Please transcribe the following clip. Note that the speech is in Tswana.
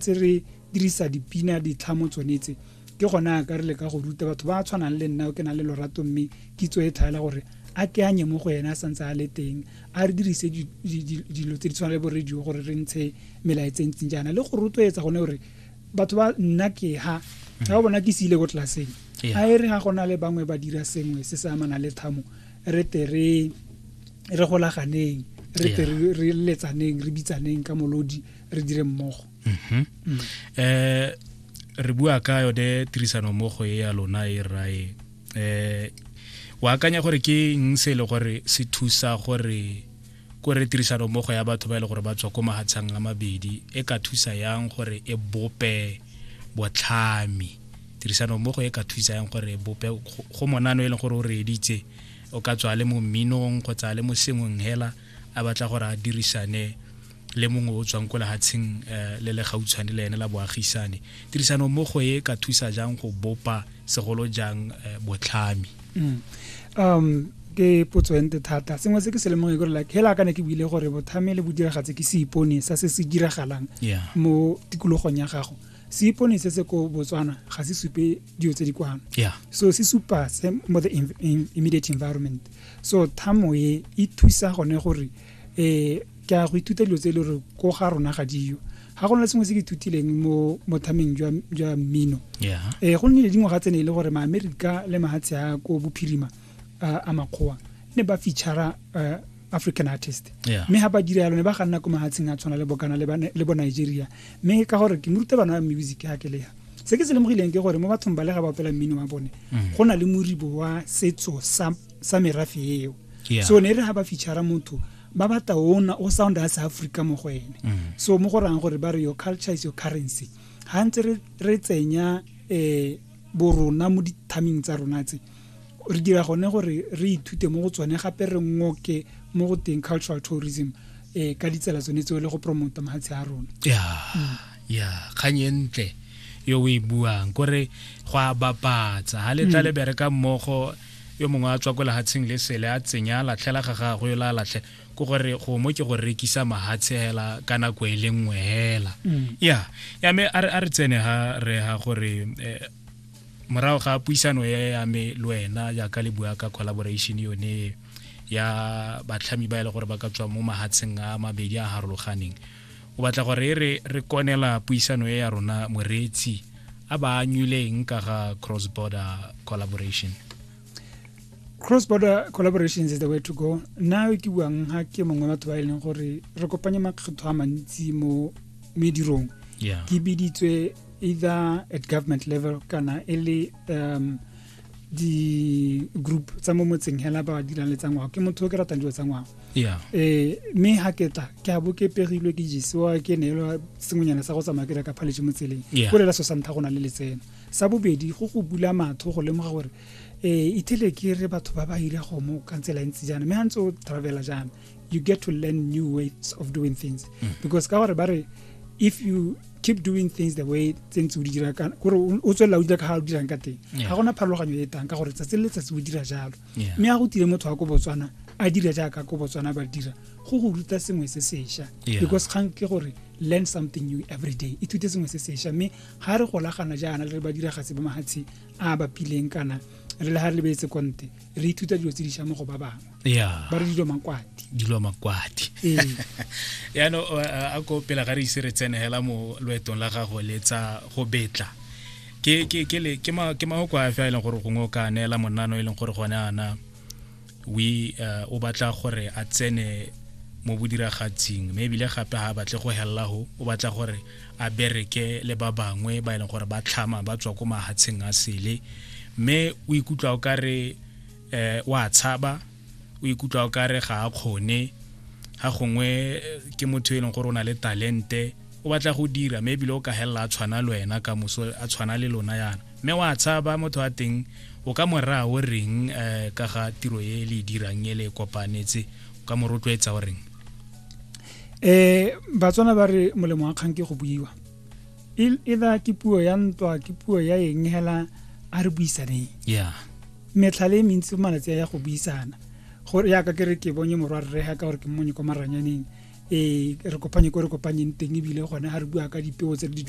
tse re dirisa dipina ditlhamo tsone tse ke gona a ka re le ka go ruta batho ba tshwanang le nna o ke na le lorato mme kitso e tlhaela gore a ke anye mo go ena a santse a le teng a re dirise dilo tse di tshwana le bo radio gore re ntshe melaetse ntseng jaana le go rotloetsa gone gore batho ba nna ke ha ga o bona ke se ile ko tlelaseng a e re ga gona le bangwe ba dira sengwe se se amana le thamo re te re golaganeng re te re letsaneng re bitsaneng ka molodi re dire mmogo um re bua ka yone tirisano mmogo e ya lona e rrae um o akanya gore ke eng se e le gore se thusa gore ko re tirisano mmogo ya batho ba e le gore ba tswa ko mahatshang a mabedi e ka thusa yang gore e bope botlhami tirisano mmogo e ka thusa yang gore e bope go monano e leng gore o re editse o ka tswa le mo mminong kgotsa le mo sengweng hela a batla gore a dirisane le mongwe o tswang ko lehatsheng eh, le le gautshwane le ene la boagisane tirisano mmogo e ka thusa jang go bopa segolo jang eh, botlhami mm. um ke potso e nte thata sengwe se ke se lemong e kore like hela ka ne ke buile gore bothame le bodiragatse ke seipone sa se se diragalang mo tikologong ya gago seipone se se ko botswana ga se supe dilo tse di kwano so se supa se mo the immediate environment so thamo e e thusa gone gore eh ke a go ithuta dilo tse e le gore ko ga rona ga diyo ga go na le sengwe se ke ithutileng mo mothameng jwa mmino eh go nnile dingwaga tsene e le gore maamerika le mahatshe a ko bophirima a makgowa ne ba feature eh, african artist mme ga ba dira yalo ne ba ga nna ko mahatsheng a tshwana le bokana le bo nigeria mme ka gore ke moruta bana ba music ya kelea se ke se lemogileng ke gore mo bathong ba le ga ba opela mmino wa bone mm. go na le moribo wa setso sa merafe eo yeah. so ne re ga ba feature motho ba batla ona o sound as africa mo go ene mm. so mo go rang gore ba re your culture is your currency ga ntse re tsenya um borona mo dithaming tsa rona tse re dira gone gore re ithute mo go tsone gape re ngoke mo go teng cultural tourism um ka ditsela tsone tseo le go promota mafatshe a rona ya mm. ya kgang e ntle yo o e buang kore go a bapatsa ga le tla mm. le bereka mmogo yo mongwe a tswa ko lehatsheng le sele a tsenya latlhela ga gagwe la latlhe ko gore go mo ke go rekisa mahatshe hela ka nako e le nngwe hela mm. ya ya me a re tsene ha re ha gore eh, morago ga puisano e ya me le wena jaaka le bua ka collaboration yone ya batlhami ba e le gore ba ka tswa mo mahatsheng a mabedi a harologaneng o batla gore e re re konela puisano e ya rona moreetsi a ba anywileng ka ga cross border collaboration cross border collaboration is the way to go nna ke buang ga ke mongwe batho ba e leng gore re kopanye makgetho a mantsi mo medirong ke biditswe either at government level kana e le um di-group tsa mo motseng hela ba dirang le tsa ngwao ke motho o ke ratang dilo tsa ngwao um mme ga ke tla ke a bo ke pegilwe ke jesewa ke neelwa sengwenyana sa go tsamaya ke reka phaletse mo tseleng ko lela so sa ntlha go na le letseno sa bobedi go go bula matho go lemoga gore um ithele ke re batho ba ba ira gomo ka tsela e ntse jaana mme ga ntse o travela jaana you get to learn new ways of doing things mm. because ka gore ba re if you keep doing things the way tse ntse o di dira gore o tswelela o dira ka ga o dirang ka teng ga gona pharologanyo e tang ka gore tsatsi le letsatsi o dira jalo mme ga go tile motho wa ko botswana a dira jaaka ko botswana ba dira go go ruta sengwe se sešwa because kgang ke gore learn something new every day ithute sengwe se sešwa mme ga re golagana jaana le re ba diragatse ba mahatshe a bapileng kana re le ga re lebetse konte re ithuta dilo tse di shamo go ba bangwe yeah. ba re dilo makwati dilo makwati ee. yaanong a ko pela ga re ise re tsene hela mo loetong la gago le tsa go betla ke ke ke le ke ma ke ma go a fa ile e gore gongwe o ka neela monano e leng gore gone ana we uh, o batla gore a tsene mo bodiragatsing mme ebile gape ga a batle go helela go o batla gore a bereke le ba bangwe ba e leng gore ba tlhama ba tswa ko mahatsheng a sele mme o ikutlwa o ka re um o a tshaba o ikutlwa o ka re ga a kgone ga gongwe ke motho e leng gore o na le talente o batla go dira mme ebile o ka helela a tshwana le wena ka moso a tshwana le lona yana mme wa tshaba motho wa teng o ka moraya o reng um ka ga tiro e le e dirang e le e kopanetse o ka mo rotloetsa o reng eh batswana ba re molemo wa kgang ke go buiwa either ke puo ya ntwa ke puo ya eng hela a re buisaneng yeah metlha le mentsi malatsi ya go buisana gore ya ka ke re ke bonye morwa rre ga ka gore ke mmonye kwa maranyaneng ee re kopanye ko re kopanyeng teng ebile gone ga re bua ka dipeo tse di